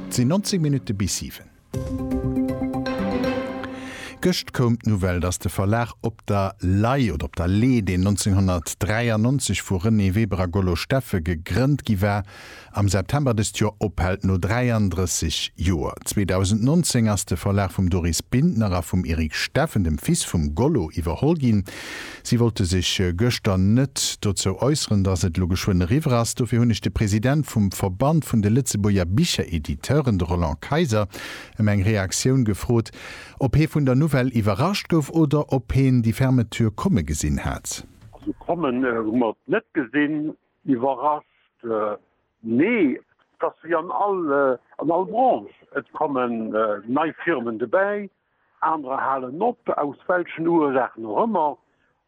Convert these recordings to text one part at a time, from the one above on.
Et sinn 19 Minutte bis 7. Gëscht koum d'Nouvelle, datt de Verlag Op der Lay oder Op der Lee, deen 1993 vu Renée Weber a Gollo Steffes gegrënnt gi war, am September dëst Joer ophält, no 33 Joer. 2019 ass de Verlag vum Doris Bintner a vum Eric Steffen, dem Fils vum Gollo, iwwerholl ginn. Si wollte sech gëschter net dozou äusseren, datt et elo geschwënn eriwwer ass. Dofir hunn ech de President vum Verband vun de Lëtzebuerger Bicherediteuren, de Roland Kayser, ëm eng Reaktioun gefrot, ob hee vun der Nouvelle iwwerrascht gouf oder ob heen déi Fermeture komme gesinn hat. Also kommen hu mer et net gesinn. Iwwerrascht, nee. Et ass wéi an all Branche, et kommen nei Firmen dobäi. Anerer halen op, aus welchen Ursaachen och ëmmer.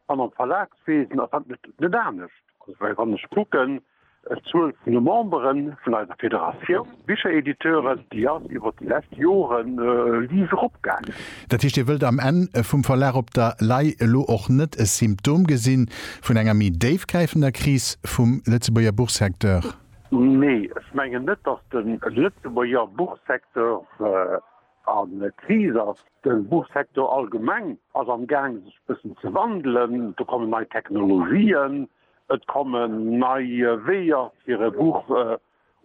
An am Verlagswesen ass dat net anescht. Also well wann ech kucken, d'Zuel vun de Memberen vun eiser Federatioun Bicherediteuren, déi ass iwwert déi lescht Jore liis eropgaangen. Dat heescht, Dir wëllt am Enn vum Verlag op der Lay elo och net e Symptom gesi vun enger méi déifgräifender Kris vum Lëtzebuerger Buchsecteur? Nee, ech mengen net, datt de Lëtzebuerger Buchsecteur An d'Kris ass. De Buchsecteur allgemeng ass am Gaang sech e bëssen ze wandelen. Do kommen nei Technologien, et kommen nei Weeër fir e Buch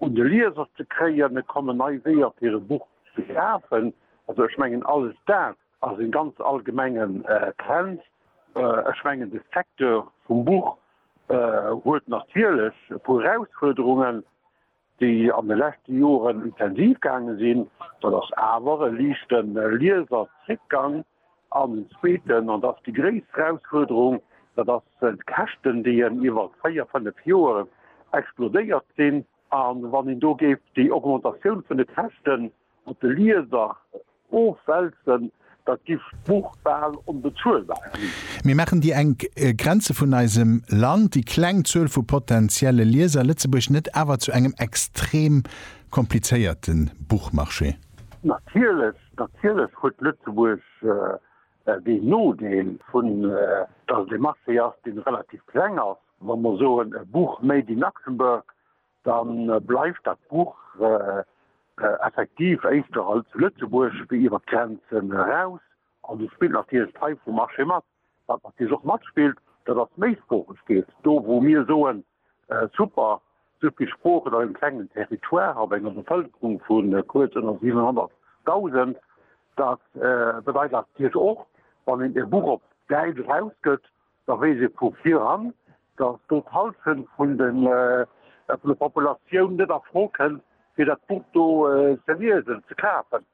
un de Lieser ze kréien, et kommen nei Weeër fir e Buch ze schafen. Also ech mengen alles dat ass e ganz allgemengen Trend. Ech mengen de Secteur vum Buch huet natierlech e puer Erausfuerderungen, déi an de leschte Joren intensiv gaange sinn, dat ass awer e liichte Lieserzréckgang, an den zweeten, an dat ass déi gréisst Erausfuerderung, dat ass d'Käschten, déi en iwwer véier, fënnef Joer explodéiert sinn. A wann een do géif déi Augmentatioun vun de Käschten Op de Lieser ofwälzen, da giff d'Buch bal onbezuelbar ginn. Mir maachen déi enk Grenze vun eisem Land, déi kleng Zuel vu potentielle Lieser, Lëtzebuerg net awer zu engem extrem komplizéierte Buchmarché? Natierlech, natierlech huet Lëtzebuerg deen Nodeel vun, dass et ee Marché ass, dee relativ kleng ass. Wa mer soen, e Buch made in Luxembourg, Da bleift dat Buch effektiv éischter als Lëtzebuerg wéi iwwer d'Grenzen eraus. An do spillt natierlech d'Fei vum Marché mat. Wat natierlech och matspillt, dat ass d'Méisproochegkeet. Do wou mir soen, super, esou vill Sproochen op engem klengen Territoire, op enger Bevëlkerung vu kuerz ënner 700.000, dat bedeit natierlech och, wann een e Buch op Däitsch erausgëtt, da weess ee vu viran, datt do d'Hallschent vun der Populatioun net a Fro kënn, fir dat Buch do ze liesen, ze kafen.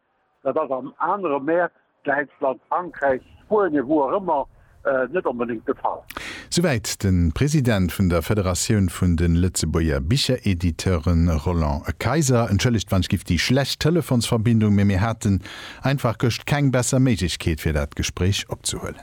Dat ass an anere Mäert, Däitschland, Frankräich, Spuenien, wou och ëmmer, net onbedéngt de Fall. Souwäit de President vun der Federatioun vun de Lëtzebuerger Bicherediteuren, Roland Kayser. Entschëllegt, wann ech giff déi schlecht Telefonsverbindung, mee mir haten einfach gëscht keng besser Méiglechkeet, fir dat Gespréich opzehuelen.